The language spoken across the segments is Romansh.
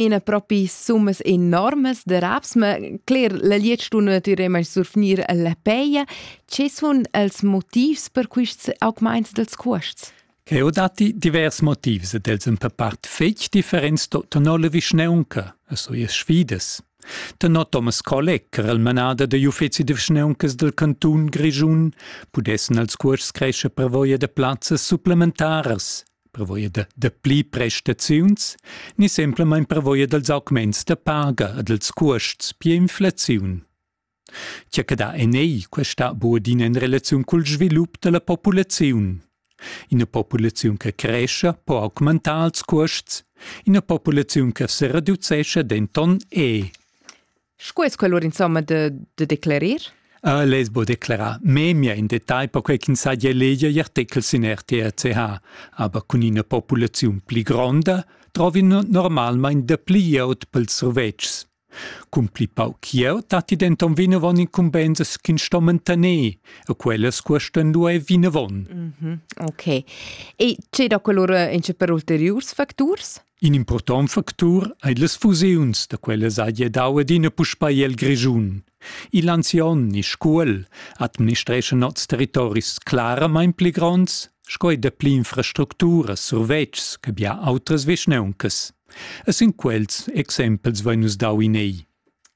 ina propi summas enormes de raps, ma cler, la lietstuna natüre mai surfnir la peia. Ce sun els motivs per quists augmaints dels cuosts? Che ho dati divers motivs ed els in per part fetg differents to tenor le vischneunca, so ies sfides. Tenor Thomas Kolleg, er el manader de uffezi de vischneuncas del cantun Grischun, pudessan els cuors cresce per voia de plazzas supplementaras, prevoia da, da pli prestaziuns, ni semplamain prevoia dals augments da paga e dals cuosts pia inflaziun. Tgia che dà en ei questa buodina en relaziun cul svilup dalla populaziun. Ina populaziun che cresce po augmentar ils cuosts, ina populaziun che se reducesce denton e. Sco es quel or insomma da, da declerir? Uh, Lez bo declara memia in detagl per quei ch'ins sa leger gli articels in RTRCH, aber cun ina populaziun pli gronda trovi normalmein dapli glieud pels survetschs. Cun pli pauc glieud datti denton vinavon incumbensas ch'ins sto mantener e quellas cuostan lu ei vinavon. Mm -hmm. Ok. E c'è da quell'ora ince per ulteriurs facturs? In impurtont factur ei las fusiuns da quellas hagi dau adina puspei el Grischun. Igl anzion ni Scuol administreschan oz territoris claramein pli gronds sco ei dapli infrastructuras, survetschs che bia outras vischneuncas. E sin quels exempels vein nus dau in ei.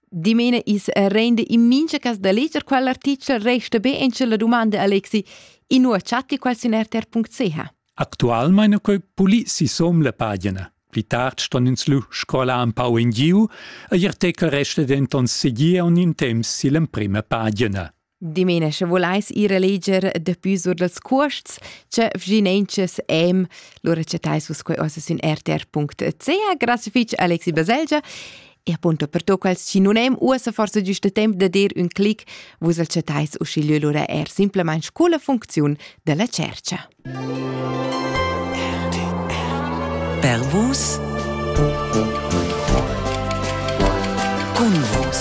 Dimene is rende in mincha cas da leger quell'artichel resta be en la domanda Alexi, in nuo chatti qual sin rtr.ch. Actualmein ha quei pulì sisom la pagina. Pli tard ston ins lu scrolar empau engiu e I'artechel resta denton segir aunc in temps sill'emprema pagina. Dimena, sche voleis ir a leger dapü sur dals cuosts, che vginenches em, lura chattais vus quei ossa sün rtr.ch. Grazie fitg Alexi Baselgia E appunto per to quels sinonim uossa forse giusta temp da dir un clic, vus al chattais uschigliö lura er simplement scu la funcziun della cercha. Per vus Cun vus